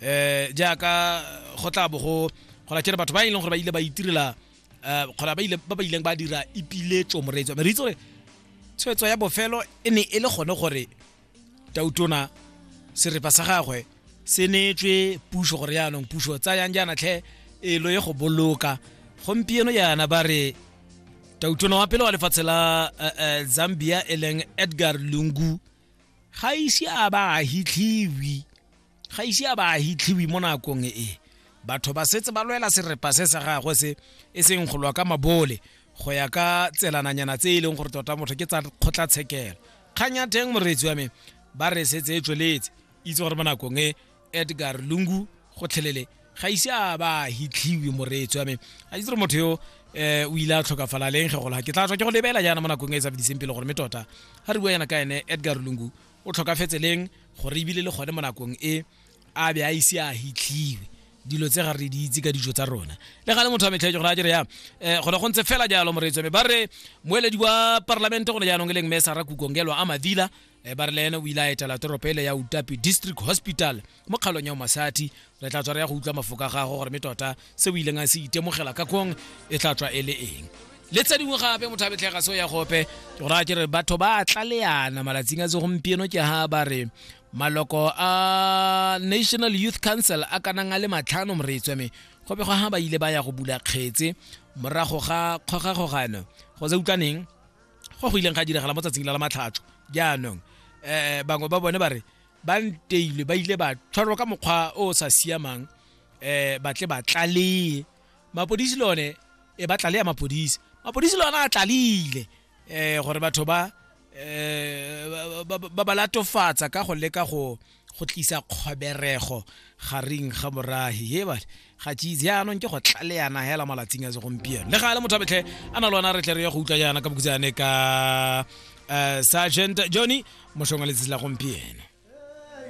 eh jaaka go tla bo go go la kere batho ba e leng gore ba ile ba itirela eh kgona ba ile ba ba ileng ba dira ipiletso moreetso me re itse gore tshwetso ya bofelo e ne e le gone gore tautona serepa sa gagwe se neetswe puso gore yaanong puso tsayang jaana tlhe e lo ye go boloka gompieno jaana ba re tautona wa pele wa lefatshe la eh, eh, zambia e leng edgar lungu ga ise a ba a hitlhiwi ga ise a ba a hitlhiwe mo nakong e batho ba setse ba lwela serepa se sa gagwe se e seng go lwa ka mabole go ya ka tselananyana tse e leng gore tota motho ke tsa kgotlatshekelo kgang ya teng moreetsi wa me ba re setse e tsweletse itse gore mo nakong e edgar lungu gotlhelele ga ise a ba hitlhiwe moreetsi wa me a itse gore motho yo eh o ile a tlhokafala leng ge gola ke tla tswa ke go lebela jaana mo nakong e sa fediseng pele gore me tota ga re bua yana ka ene edgar lungu o tlhokafetse leng gore ebile le gone mo nakong e a be a ise a hitlhiwe dilo tse ga re di itse ka dijo tsa rona le ga le motho a metlhetse gore a dire yang um gone go ntse fela jalo moreetso me ba re moeledi wa parlamente gone jaanong e leng mme sara kukongelwa a mavila um ba re le ene o ile a etela toropo ele ya utapi district hospital mo kgaolong ya omasati re tla tswa re ya go utlwa mafoko a gago gore me tota se o ileng a se itemogela ka kong e tla tswa e le eng le tse dingwe gape motho a betlhega seo ya gope ke go raya ke re batho ba tlaleana malatsing a segompieno ke ha ba re maloko a national youth council a kanang a le matlhano moretswe me go bego ha ba ile ba ya go bula kgetse morago ga kgogakgogano go se utlwaneng go go ileng ga diragala mo tsatsing la la matlhatso jaanong um bangwe ba bone ba re ba nteilwe ba ile ba tshwarwa ka mokgwa o o sa siamang eh ba tle ba tlaleye mapodisi le one e ba tlaleya mapodisi mapodisi le one a tlalile eh gore batho ba eh ba- ba- ba ba latofatsa ka go leka go go tlisa kgoberego gareng ga morahi he ba ga cheese yaanong ke go tlaleana hela malatsing a segompieno le ga le motho a betlhe a na le ona re tle re ya go utlwa jaana ka bokutsane ka um sergeant johnny moshong wa letsatsi la gompieno